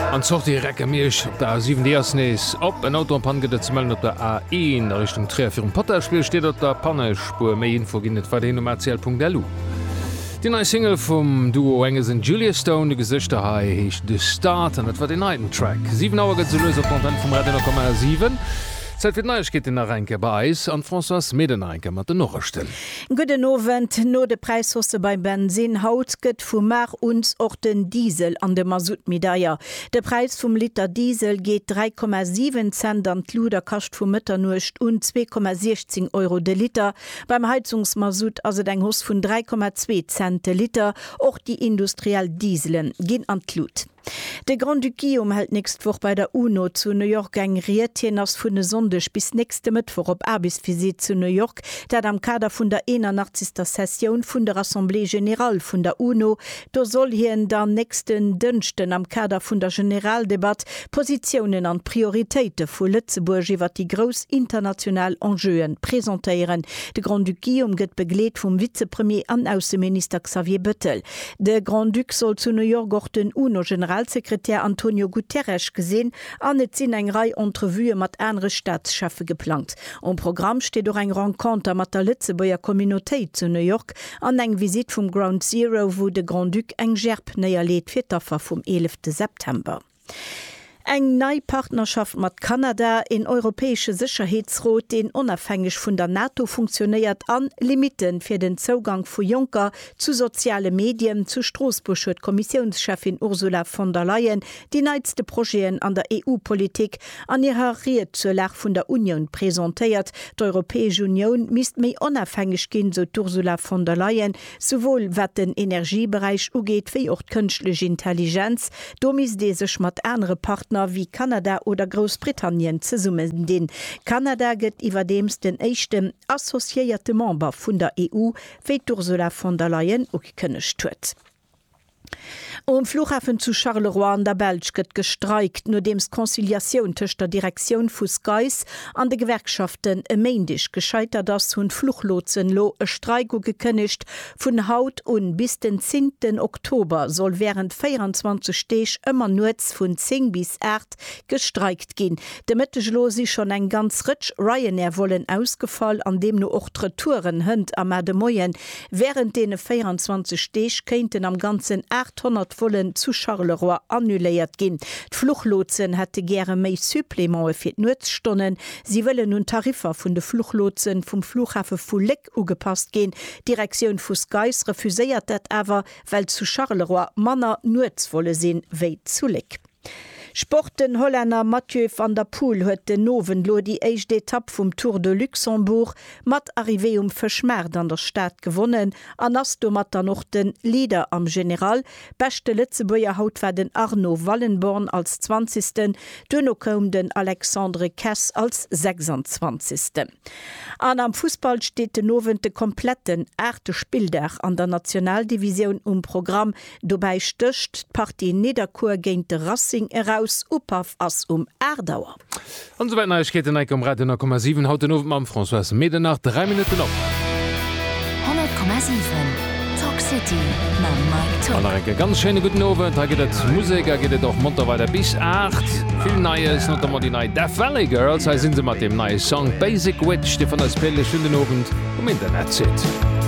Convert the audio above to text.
An d'Sortie recke mir iech op der A7, déi ass nees op. En Auto an Pann gëtt et ze mellen op der A1 a Richtung Tréier. Virum Pottersbier steet et op der Pannespuer. Méi Info ginn et weiderhin um atl.lu. Déi nei Single vum Duo Angus an Julia Stone, Du Gesichter, hei heescht The Start an dat war deen heiten Track. Siwen Auer gëtt, esou lues op d'Antenn vum Radio Nord komm. A 7, Zäit fir d'Neiegkeeten nach eng Kéier bei eis an d'Françoise Meden nach eng Kéier mat den Norechten. Gudden Owend. No de Präishaussë beim Bensinn haut gëtt gëtt vu mar uns och den Diesel an de Masutt méi deier. De Präis vum Liter Diesel geet 3,7 Cent an d'Lut a kascht vu Mëtternuecht un 2,16 Euro de Liter. Beim Heizungsmasutt ass et eng Hoss vun 3,2 Cent de Liter. Och déi industriell Dieselen ginn an d'Lut. De Grand-Duc Guillaume hält nächst Woch bei der UNO zu New York eng Ried. Hien ass vun e Sonndeg bis nächste Mëttwoch op Aarbechtsvisitt zu New York, dat am Kader vun der 81. Sessioun vun der Assemblée générale vun der UNO. Do soll hien dann nächsten Dënschden am Kader vun der Generaldebatt d'Positiounen an d'Prioritéite vu Lëtzebuerg iwwer déi grouss international Enjeue presentéieren. De Grand-Duc Guillaume gëtt begleet vum Vizepremier an Ausseminister Xavier Bettel. De Grand-Duc soll zu New York och den UNO-Generalsekretär Antonio Guterres gesinn an et sinn eng Rei Entrevuë mat anere Staatscheffe geplangt. Um Programm steet och eng Renconter mat der Lëtzebuerger Communautéit zu New York an eng Visitt vum Ground Zero, wou de Grand-Duc eng Gerb néierleet fir d'Affer vum eelefte September. Eng nei Partnerschaft mat Kanada, een europäesche Sécherheetsrot, deen onafhängeg vun der NATO funktionéiert, an Limitte fir den Zougank vu Jonker zu soziale Medien, Zu Stroossbuerg huet d'Kommissiounscheffin Ursula von der Leyen déi neitste Projeten an der EU-Politik an hirer Ried zur Lag vun der Unioun presentéiert. D'Europäesch Unioun misst méi onafhängeg ginn, sou d'Ursula von der Leyen. souwuel wat den Energieberäich ugeet wéi och d'kënschtlech Intelligenz, do misst ee sech mat anere Partner wéi Kanada oder Groussbritannien zesummendinn. Kanada gëtt iwwerdeems den éischten associéierte Member vun der EU, wéi d'Ursula von der Leyen ugekënnegt huet. Um Flughafen zu Charleroi an der Belsch gëtt gestreikt, nodeems d'Conciliatioun tëscht der Direktioun vu SCAIS an de Gewerkschaften e Méindeg gescheitert ass, hunn d'Fluchlotsen elo e Streik ugekënnegt. Vun haut un bis den 10 ten Oktober soll wärend 24 Deeg ëmmer nuets vun 10 bis 8 gestreikt ginn. De Mëtteg elo si schonn eng ganz Rëtsch Ryanair-Vollen ausgefall an deemno och d'Retouren hënt a mar de Moien. Wärend deene 24 Deeg kéinten am Ganzen 800 Vollen zu Charleroi annuléiert ginn. D'Fluchlotsen hätte gäre méi Supplémente fir d'Nuetsstonnen. Si wëllen un d'Tariffer vun de Fluchlotse vum Flughafe vu Léck ugepasst ginn. D'Direktioun vu SCAIS refuséiert dat awer, well zu Charleroi manner Nuetsvolle sinn, wéi zu Léck. Sport, Den Hollänner Mathieu van der Poel huet den Owend elo déi éischt Etapp vum Tour de Luxembourg mat Arrivée um Fëschmaart an der Stad gewonnen an ass domat dann och de Leader am General. Beschte Lëtzebuerger haut war den Arno Wallenborn als Zwanzegsten, duerno koum den Alexandre Kess als Sechsandzwanzegsten. An am Fussball steet den Owend de kompletten aachte Spilldag an der Nationaldivisioun um Programm. Dobäi stécht d'Partie Nidderkuer géint de Racing eraus. Upaff ass um 8 Auer. An esou wäit Neiegkeeten hei um Radio 10,7 haut den Owend mam Françoise Medernach. 3 Minutten op. 100,7 Talk City mam Mike An Tock. nach eng Kéier ganz schéine gudden Owend. Hei gëtt et Musek a geet et och monter weider bis 8. Vill Neies, notamment déi nei Death Valley Girls. Hei si se mat deem neie Song Basic Witch, dee vun eis Playlist vun den Owend um Internet zitt.